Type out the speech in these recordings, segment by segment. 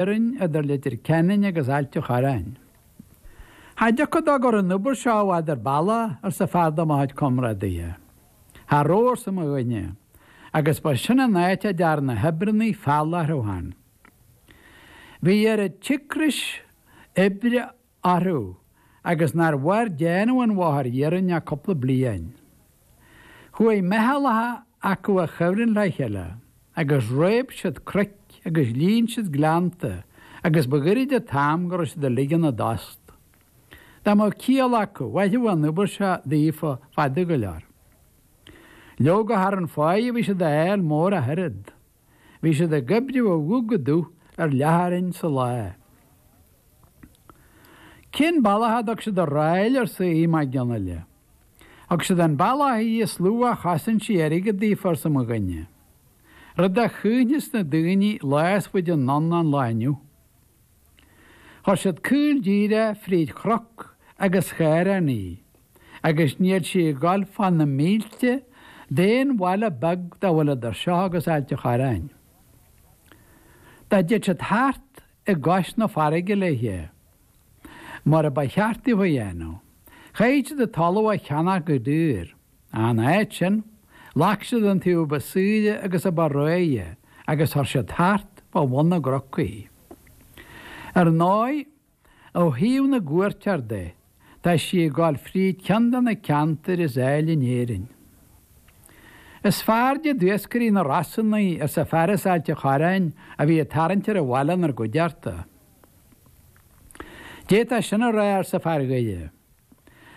iarainn idir Leitir Ceanainn agus Ailt a Chorráin. Cha dtiocfadh dó go raibh an obair seo i bhfad ar bealach arsa fear de mo chuid comrádaithe. Cha rabh arsa mo dhuine agus ba sin an áit a dtearn na hoibreannaí feall orthu féin. Bhí oiread cíocrais oibre a. orthu agus nár mhair déanamh an bhóthair iarainn ach cúpla bliain. Chuaigh meithealacha acu a choimhlint le chéile agus réab siad cnoic agus líon siad gleannta agus ba ghairid an t-am go raibh siad uilig ina dtost. Dá mbeadh ciall acu, mhairfeadh an obair seo daofa fada go leor. Leoga cha rabh an pháighe a bhí siad a fháil mór ach oiread. Bhí siad ag oibriú ó dhubh go dubh ar leathchoróin sa lá. Cén bealach a dtug siad an ráil arsa Aodh Mac Fhionnghaile. Thug siad an bealach í is lú a chosain sí airgead daofa arsa mo dhuine. Rud a chuimhneos na daoine lá is faide anonn ná an lá inniu. Chuir siad caol díreach fríd chroc agus caorán í, agus níl sí ag dul fá na mílte d'aon bhaile beag dá bhfuil idir seo agus Ailt a Chorráin. Dá dtéadh siad thart i gcois na farraige léithe, mar a ba cheart daofa a dhéanamh, chaithfead siad an talamh a cheannach go daor. In áit sin, ghlac siad an taobh ba saoire agus a ba réidhe agus chuir siad thart fá bhun na gcroc í. Ar ndóigh, ó thaobh na gcuairteoir de, tá sí ag dul fríd ceann de na ceantair is áille in Éirinn. Is fearrde d'iascairí na Rosann í, arsa fear as Ailt a Chorráin a bhí ag tarraingt ar an bhaile inár gcuideachta. D'fhéadfá sin a rá, arsa fear Dhoire.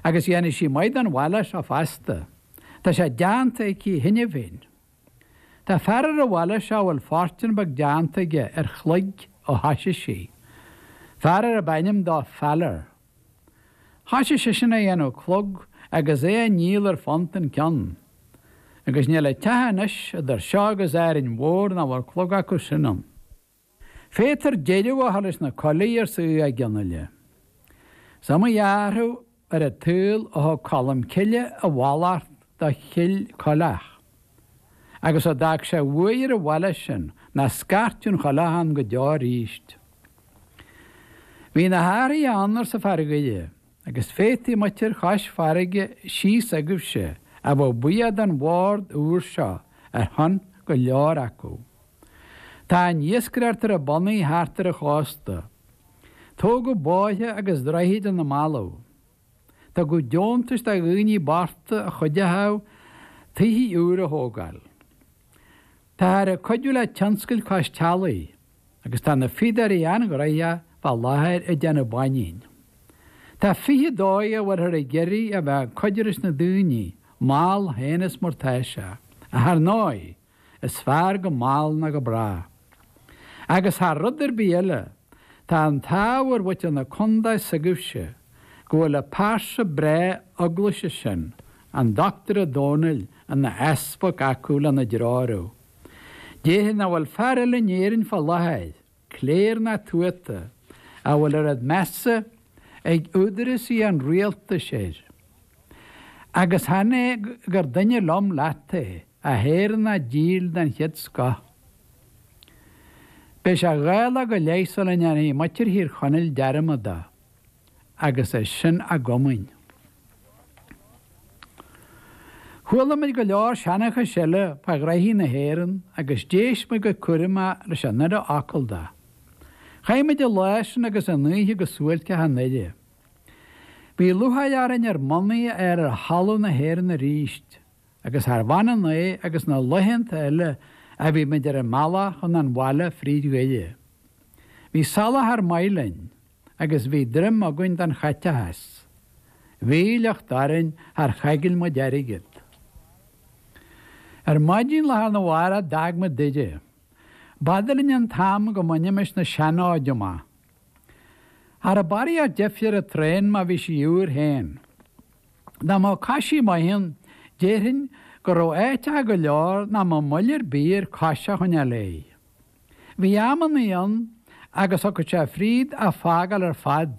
agus dhéanfaidh sí maith don bhaile seo feasta. Tá sé déanta aici cheana féin. Tá fear ar an bhaile seo a bhfuil fortún beag déanta aige ar chloig ó thoisigh sí, fear ar ab ainm dó Faller. Thoisigh seisean a dhéanamh clog agus é a ndíol ar phunt an ceann. Agus níl aon teach anois idir seo agus Árainn Mhór nach bhfuil clog acu sin ann. Féadtar deireadh a chur leis na coiligh arsa Aodh Mac Fhionnghaile. Is iomaí athrú ar an tsaol ó thug Colm Cille a mhallacht do Chill Coileach agus a d'fhág sé de bhuaidh ar an bhaile sin nach scairtfeadh aon choileach ann go deo arís. Bhí na hathruithe ann, arsa fear Dhoire, agus féadfaidh muintir Chois Farraige thíos agaibhse a bheith buíoch den bhord úr seo ar shon go leor acu. Tá an iascaireacht ar a bonnaí thart ar an chósta. Tógadh bóithre agus droichid ina mballaibh. Tugadh deontais do dhaoine bochta a chuideochadh tithe úra a thógáil. Táthar ag cuidiú le tionscail cois teallaigh agus tá na fíodóirí an-ghnoitheach fá láthair ag déanamh báinín. Tá fiche dóigh a bhfuilthear ag iarraidh a bheith ag cuidiú leis na daoine mall fhéin is mar atá sé, ar ndóigh, Is fearr go mall ná go brách. Agus thar rud ar bith eile, tá an t-ádh ar mhuintir na contae s'agaibhse go bhfuil an phearsa bhreá eaglaise sin, an Dr Ó Dónaill, ina easpag acu lena dtreorú. D'fhéadfaí nach bhfuil fear eile in Éirinn fá láthair cléir ná tuata, a bhfuil oiread measa ag údarásaí an rialtais air. Agus chan é gur duine liom leat é, ach Éireannach díl den chéad scoth. Beidh sé dhá lá go leith sula ndéanfaidh muintir Thír Chonaill dearmad dó. agus é sin a gcomaoin. Chuala muid go leor seanchais eile fá ghnoithe na hÉireann agus d'éist muid go cúramach leis an uile fhocal de. Chaith muid an lá sin agus an oíche go suáilceach i nDoire. Bhí lúcháir orainn ár mbonnaí a fháil ar thalamh na hÉireann arís, agus charbh ionann é agus na laethanta eile a bhí muid ar an mbealach chun an bhaile fríd Dhoire. Bhí soláthar maith linn. agus bhí droim againn don chaiteachas. Bhí a shliocht orainn, char choigil muid airgead. Ar maidin lá arna mhárach d'fhág muid Doire. B'fhada linn an t-am go mbainimis na sean-fhóid amach. Cha raibh barraíocht deifre ar an traein má bhí sí úr féin. Dá mbeadh coisí maith ann, déarfainn go raibh áiteacha go leor nach mbeadh moill ar bith air cos a choinneáil léi. Bhí amannaí ann agus thiocfadh sé fríd a' fágáil ar fad.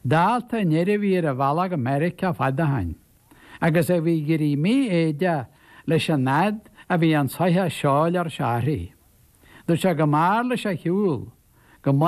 Dálta an fhir a bhí ar a bhealach go Meiriceá fad ó shin. Agus a bhí ag éirí mífhoighdeach leis an fhaid a bhí an tsoitheach seoil ar seachrán. Dúirt sé go mb'fhearr leis a shiúl, go